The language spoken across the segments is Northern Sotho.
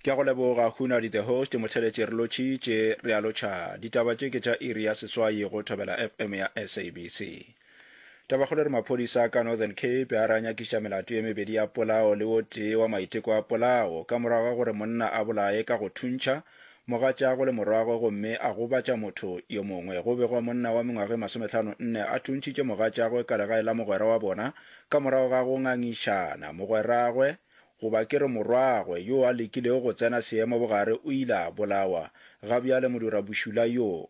ke a go leboga hunadi the host motheletše re lotšhitše re a lotšha ditaba tše ke tša iri ya seswai go thobela fm ya sabc taba kgolo re maphodisa ka northern cape a ra nyakiša melato ye mebedi ya polao le o tee wa maiteko a polao ka morago ga gore monna a bolaye ka go thuntšha Mogatšago le morwagwe gomme a gobatša motho yo mongwe. Go begwa monna wa mengwaga e masometlhano nne a thuntšhitše mogatšagwe ka legae la mogwera wa bona ka morago ga go ngangišana. Mogweragwe, goba ke re morwagwe, yo a lekilego go tsena seemo bogare o ile a bolawa. Ga bjale modirabošula yo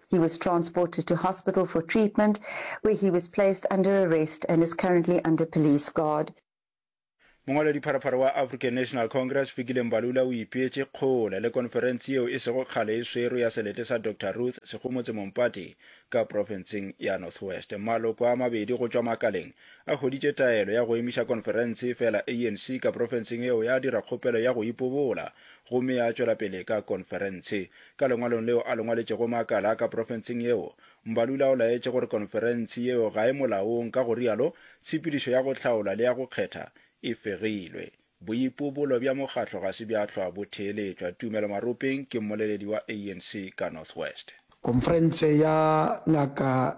He was transported to hospital for treatment where he was placed under arrest and is currently under police guard. Mongwaladipharapara wa African National Congress, Fikile Mbalula o ipeetše kgole le konferense yeo e sego kgale e swerwe ya selete sa Doctor Ruth Sekgomotse Mompati ka profenseng ya North West. Maloko a mabedi go tšwa makaleng a hweditše taelo ya go emiša konferense efela ANC ka profenseng yeo ya dira kgopelo ya go ipobola gomme ya tšwela pele ka konferense. Ka lengwalong leo a le ngwaletšego makala ka profenseng yeo, Mbalula o laetše gore konferentshe yeo ga e molaong ka go rialo tshepedišo ya go hlaola le ya go kgetha e fegilwe. Boipobolo bja mokgatlo ga se bja hlwa bo theeletšwa, Tumelo Maropeng ke mmoleledi wa ANC ka North West. Konferentshe ya Ngaka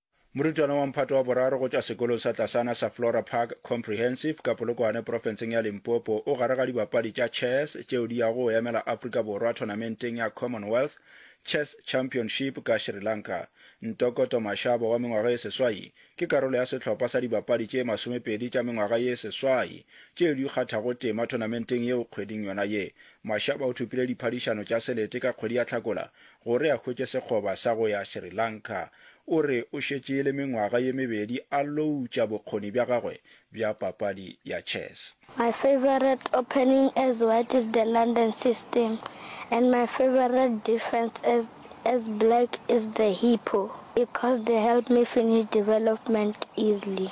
Morutwana wa mphato wa boraro go tšwa sekolong sa tlasana sa Flora Park Comprehensive ka Polokwane profenseng ya Limpopo o gare ga dibapadi tša chess tšeo di yago go emela Afrika Borwa thonamenteng ya Commonwealth Chess Championship ka Sri Lanka. Ntokoto Mashaba wa mengwaga e seswai ke karolo ya sehlopha sa dibapadi tše masomepedi tša mengwaga ye seswai tšeo di kgathago tema thonamenteng yeo kgweding yona ye. Mashaba o thopile diphadišano tša selete ka kgwedi ya Hlakola Gore a hwetše sekgoba sa go ya Sri Lanka, o re o šetše e le mengwaga ye mebedi a loutša bokgoni bja gagwe bja papadi ya chess. My favourite opening as white is the London system and my favourite defence as as black is the hippo because they help me finish development easily.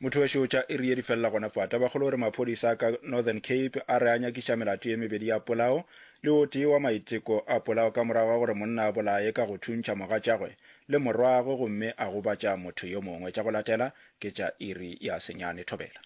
Motho wešo tša iri ye di felela gona fa. Tabakgolo o re maphodisa a ka Northern Cape a re a nyakiša melato ye mebedi ya polao le o tee wa maiteko a polao ka morago ga gore monna a bolaye ka go thuntšha mogatšagwe le morwagwe gomme a gobatša motho yo mongwe. Tša go latela ke tša iri ya senyane. Thobela.